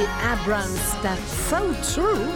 Abrams dat so true?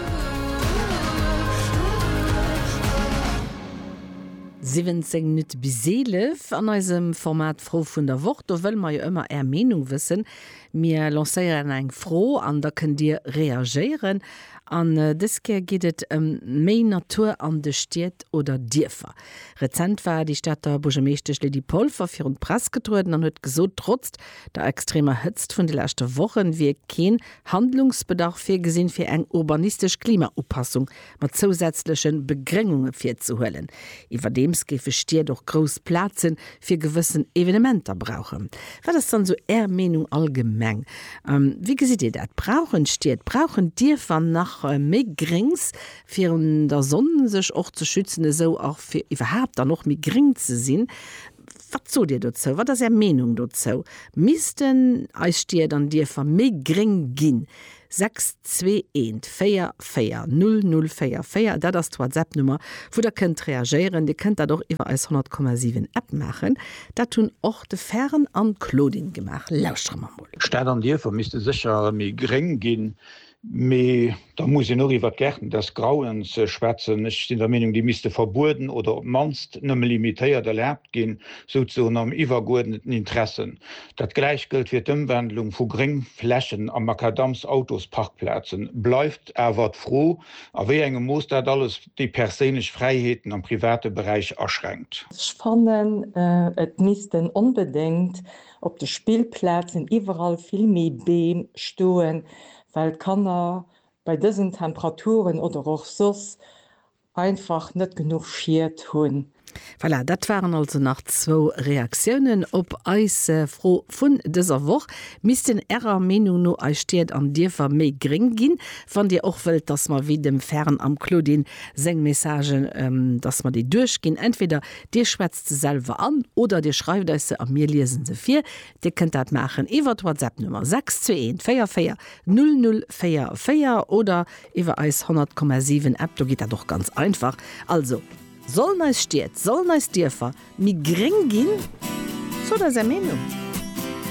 17 Minutte bis 11 an eisem Format Fro vun der Woch. Do wëlle mer jo ëmmer Är Meenung wëssen. Mir lancéieren eng Fro an da kënnt Dir reagéieren. An dës Kéier geet et ëm méi Natur an de Stied oder Dierfer. Rezent war déi Stater Buergermeeschtesch Lydie Polfer virun d'Press getrueden an huet gesot, trotz Der extremer Hëtzt vun de leschte Wochen wier keen Handlungsbedarf virgesinn, fir eng urbanistesch Klimaupassung mat zousätzlechen Begréngunge virzehuelen. Iwwerdeems géife Stied och grouss Plazen fir gewëssen Evenementer brauchen. Wat ass dann esou Är Meenung allgemeng? Wéi gesitt Dir dat? Brauchen Stied, brauchen Dierfer nach méi Gréngs virun der Sonn sech och ze schützen, esou och fir iwwerhaapt dann och méi gréng ze sinn? Wat sot Dir dozou? Wat ass Är Meenung dozou? Missten eis Stied an Dierfer méi gréng ginn? 62144004, dat ass d'Whatsapp-Nummer, wou Der kënnt reagéieren. Dir kënnt dat och iwwer eis 100,7 App maachen. Dat hunn och de Fern an d'Claudine gemaach. Lauschtere mer mol. Stad an Dierfer misste sécher méi gréng ginn. Mee da muss een och iwwert d'Gärten des Grauens schwätzen. Ech sinn der Meenung, déi misste verbueden oder op d'mannst nëmme limitéiert erlaabt ginn, souzesoen am iwwergeuerdneten Interesse. Dat gläicht gëllt fir d'Ëmwandlung vu Gréngflächen a Makadamsautosparkplazen. Bleift awer d'Fro, a wéi engem Mooss dat alles déi perséinlech Fräiheeten am private Beräich aschränkt. Ech fannen, et missten onbedéngt Op de Spillplazen iwwerall vill méi Beem stoen, well d'Kanner bei dësen Temperaturen oder och soss einfach net genuch Schied hunn. Voilà, dat waren also nach zwou Reaktiounen op eis Fro vun dëser Woch. Missten Ärer Meenung no eis Stied an Dierfer méi gréng ginn? Wann Dir och wëllt, dass mer wéi dem Fern am Claudine seng Messagen, dass mer déi duerchginn, entweder Dir schwätzt se selwer an oder Dir schreift eis se a mir liese se vir. Dir kënnt dat maachen iwwer d'Whatsapp-Nummer 621440044 oder iwwer eis 100,7 App. Do geet dat och ganz einfach. Also, sollen eis Stied, sollen eis Dierfer méi gréng ginn? Sot eis Är Meenung!